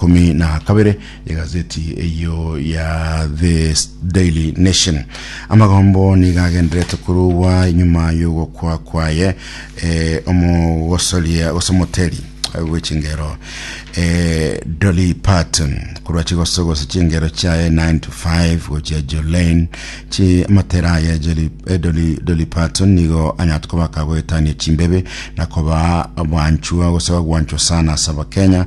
ikomi na kabere y'egazeti eyo ya the daily nation amagombo niga agenderete korogwa nyuma y'ogokwa kwaye eh, omogosoria gose omoteri gwechingero eh, dolly parton korwa chigoso gose chingero chiaye 9 to 5 gochia jolane chi amatera aye Jolly, eh, dolly, dolly parton nigo anyate kobaka goetania chimbebe na koba abwanchwa gose bagwanchwa sana asaba kenya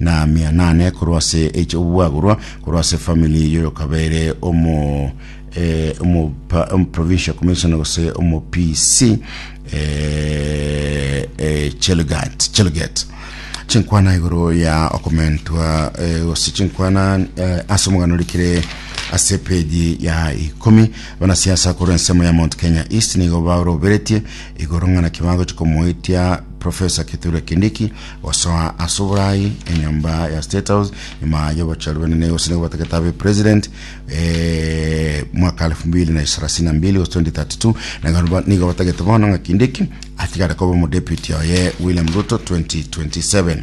na mia nane korwa ase eki'obwagorwa korwa ase efamili y'oyokabeire omo eh, omo pa- omo provincial commissioner gose omo PC eh, eh, Chelgat Chelget chinkwana igoro ya okomentwa eh, gose chinkwana eh, ase omogano rikire ase peji ya ikomi banasiasa korwa ensemo ya mount kenya east nigo baroberetie igoro ng'ana kibago chikomoetia profesa kithure kindiki Gosoa ase oboraai enyomba ya State House nyuma y'obochori bwenene gose nigo batagete abe president eh, mwaka 2032 gose 2032 nagano nigo batagete bono ng'a kinde eki atigare koba omodeputy oye William Ruto 2027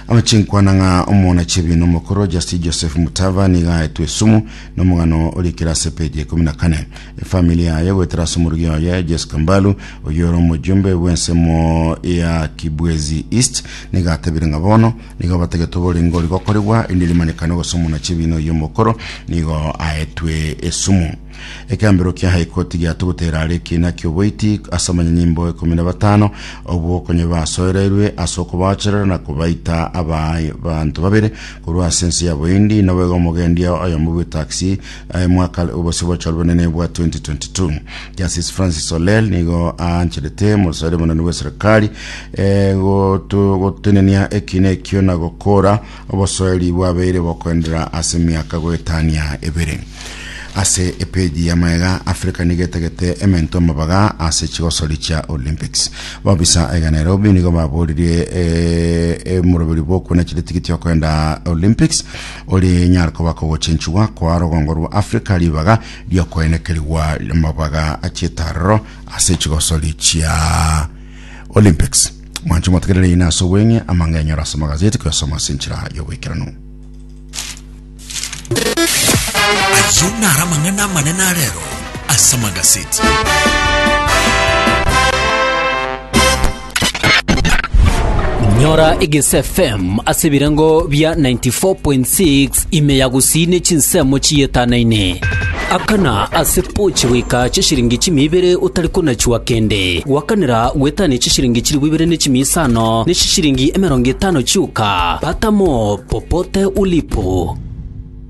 amachinkwana ng'a omona chebino omokoro Justin Joseph Mutava niga aetwe esumu nomogano orikire ase page ya ikumi na kane efamili yaye goetera ase omorogi oye Jesca Mbalu oyio ore omojumbe bw'ensemo ya Kibwezi East nigo atebire ng'a bono nigo batagete oborenge ori gokoregwa erinde rimanekane gose omonachi ebiina oyio omokoro nigo aetwe esumu Ekeambero kia High Court giato gotera are ekiina ki'oboiti ase abanyanyimbo ikomi na batano obwo konya basoereirwe ase okobaocherera na kobaita abanto babere korwa ase ense ya Bohindi noboiga omogendia oyomo bw'etaxi Aye mwaka obosibwa chwa bonene bwa 2022 Justice Francis Olel nigo aancherete mosaire monene bwa serikali eh, gotu- gotenenia ekina ekio na gokora obosoeri bwabeire bokoendera ase miaka goetania ebere ase epeji ya maega africa nigo etagete emento amabaga ase chigosori chia olympics babisa ega nairobi nigo baboririe eh, eh, moroberi bokuna chire tigiti okoenda olympics Ore nyare koba kogochenchigwa kwa rogongo rwa Afrika ribaga riokoenekerigwa amabaga achitarero ase chigosori chia Olympics. Mwanche motegerere ina ase obweng'e amang'e enyora ase magazeti koyasoma ase enchera y'oboikeranu. Ayio naro amang'ana amanene arero ase amagazeti. Nyora Egese FM ase ebirengo bia 94.6 ime ya gusii ne chinsemo chiyetanaine. Akana ase pochi goika chishiringi chimia ibere otari konachua kende. Gwakanera gwetania chishiringi chilifu ibere ne chimia isano ne chishiringi emerongo etano chioka. Pata mo popote ulipo.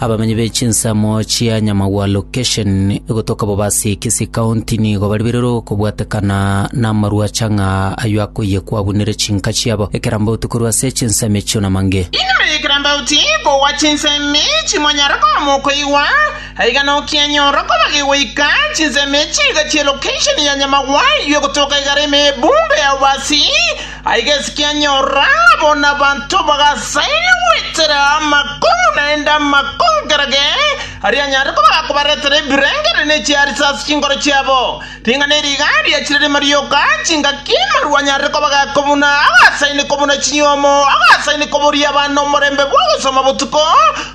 Abamenyi be chinsemo chia Nyamagwa Location egotoka Bobasi Kisii County nigo baribererwe okobwatekana namarwache ng'a ayio akoyia kwabunire chinka chiabo ekerambauti korwa ase chinsemo echio na mange. Igoro y'ekerambauti kogwa chinsemo echi mwanyare koba mokoigwa, aiga nokianyora kobage goika chinsemo echi iga chie Location ya Nyamagwa ayio egotoka igare ime ebungo ya Bobasi, Aiga esike anyora abo nabanto bagasaine goetera amakong'u naende amakong'u kera ge aria anyare koba gakobaretera ebirengererio ne chiarisa ase chinkoro chiabo. Ring'ana eri iga riachire rimo rioka, chingaki amaru anyare koba gakobuna, agasaine kobuna chinyuomo, agasaine koboria abana omorembe bw'ogosoma botuko,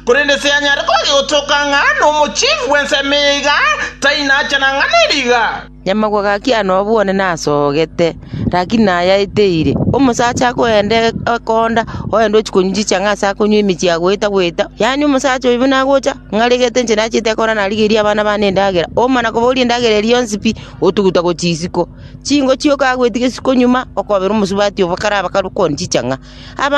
korende ase anyare koba gegotoka ng'a nomochifu bw'ensemo eye iga, tai nacha nang'ana eri iga. Nyamagwa gachia nobwone nasogete, rakini nayaete ire. Omosacha akoenda ekonda, oende ochia konywa chichang'a ase akonywa emechie agoeta goeta. Yaani omosacha oyo buna agocha, ng'aregete inche nachete ekona narigerie abana bane endagera. Omana koboria endagera eria yonsi pi, otuguta gochia isiko. Chingo chioka agoetigesi konyuma, okobera omosubati obo kare abakare okonywa chichang'a. Abana.